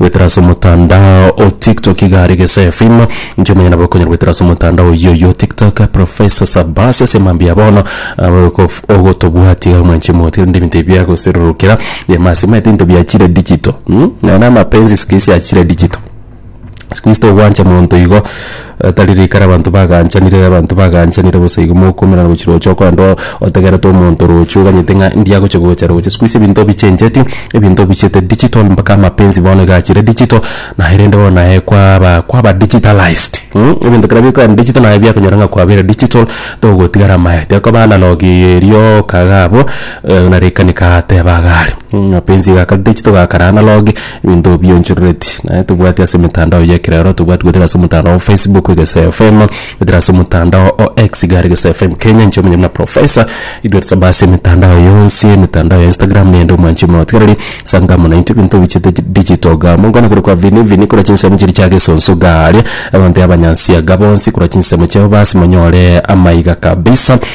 Goetera ase omotandao o TikTok iga are gese efilm inche omonyene nabo okonyara goetera ase omotandao oyio oyio TikTok Professor Sabasi ase emambia ya bono abo okof- ogotobwati iga mwanche moti rende ebinto ebi biagoserorokera biama ase omanyete ebinto biachire digital mm? Nonya na amapenzi siku hizi achire digital siku hizi togwancha monto igo. Tari rikara abanto bagaachanire, abanto bagaachanire bosa igo mokomerana gochia roche okorende otegerete omonto roche oganyete ng'a ndi agochia gocha roche. Sikuhizi ebinto bichencheti, ebinto bichete digital mpaka amapenzi bono iga achire digital, naye rende bono naye kwaba kwaba digitalized mh, ebinto kera bikoenda digital naye biakonyora ng'a kwabeire digital togotigara amaete. Ekoba analog erio okaga abwo, na rikanika ateeba iga are, mapenzi iga akare digital iga akare analog, Ebinto bionchorereti naye tobwati ase emetandao y'ekerero tobwati goetera ase omotandao o Facebook Egesae FM goetera ase omotandao o X iga are Egesae FM Kenya inche omonye buna Professor idwete saba ase emetandao yonsi emetandao ya Instagram nende omwanchi omoe otigareri sanga mono intwe ebinto tobichete di- digital igaa mongwana korwa kwa Vini Vini korwa chinsemo chiria chia Gesonso igaa aria abanto abanyansiaga bonsi korwa chinsemo chiabo basi monyore amaiga kabisa.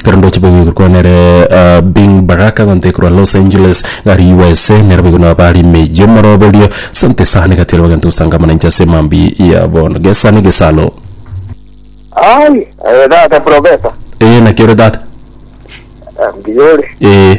Ekero ndoche boigo igoro kwao nere Bing Baraka egento ekorwa Los Angeles gari USA nero boigo nabare ime eyio omoroberio sante esano egatiara bagento gosangamana inche ase emambia ya bono gesa ne gesalo. Aye, eh, tata professor. Ee naki ore tata? Eh, mbuya ore. Ee.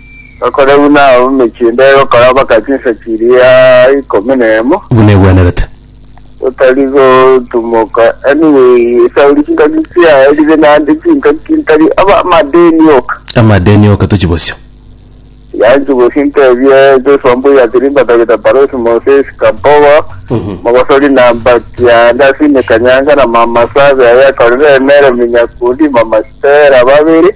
Bakore buna abamechie inde gokora mpaka chinsa chiria ikomi na emo, buna egwenerete. otari gotumoka, anyway, esauri chingaki chiaye ribe naende chingaki ntari aba amadeni oka. Amadeni oka tochi bosio. Tiga nchibosie ntebie Joshua Mbuya Tirimba Dagita Parosi Moses Kabogo mogosori na mbaki aande ase imekanyanga na mama Sabe aye akorire emere eminyakundi mama Stella babiri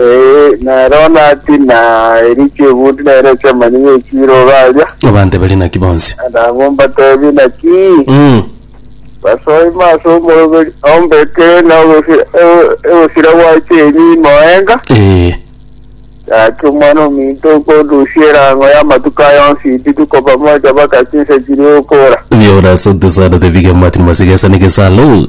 Ee, nero naki na eriki egundi nere ekiamanyi ng'ekiire obe aria, Abante bari naki bonsi. na abwo mbatebi naki Mm. basoima ase omoroberi ombeke na ogosira o- ogosira gwache enyi moenga, Ee. gaki omwana ominto okondusia erango y'amatuko aya onsi intiti koba mocha baka chinsa chiria okora. Biora asante sana the big man masiga sana gesalo.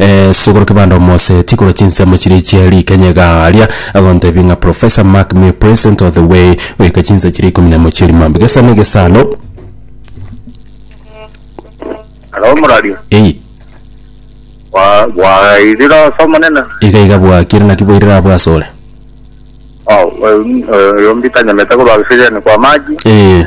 Ee, Sogoro Kibanda omoseeti korwa chinsemo chiria chie rikenya iga aria agontebia ng'a Professor Mark me present of the way goika chinsa chiria ikomi na emo chie rimambe gesa na gesa alo Halo Murario, ei wa wairire oso omonene. iga iga bwakire naki bwairire abo ase ore Oh, eh, eh, yombita nyamete korwa gisegeni kwa maji. ee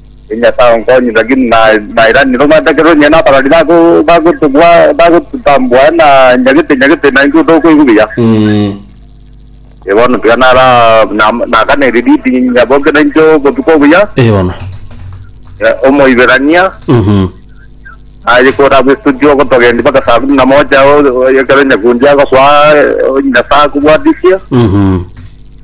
Ee Nyasae onkonye, lakini nairani romanyakero onye nabarwani bagotambwa na nyagete nyagete, na intwe tokoigwa buya. Ee bono tiga naganerie Didi nyaboke na intwe obotuko obuya. Ee bono. Omoiberania aye kore abwo estudio ogotogendia mpaka saa kumi na moja ekero nyakundi agosoa Nyasae akobwatisie.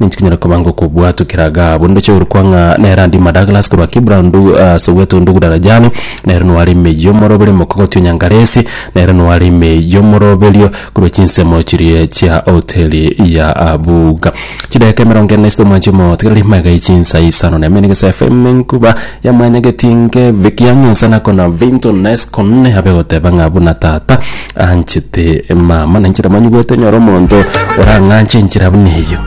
Ninki kinyare koba ngokobua tokera Gabu? Ndoche orokwa ng'a nere Andima Douglas korwa Kibrandu ase ogwete Undugu Darajani. Nere noware ime y'omoroberi omokogoti o Nyangalesi. Nere noware ime y'omoroberio korwa chinsemo chiria chia hoteli ya Abuga. Chidaeka emerongo ene isiko mwanche omotigereri maegaiye chinsa isano na ime negesae FM enkuba yamwanyageti inke Vic Young insa nakona Vinton Nescon abe goteba ng'a buna tata anchete mama na inche namanyigwete nyore omonto orang'anche enchera buna eyio.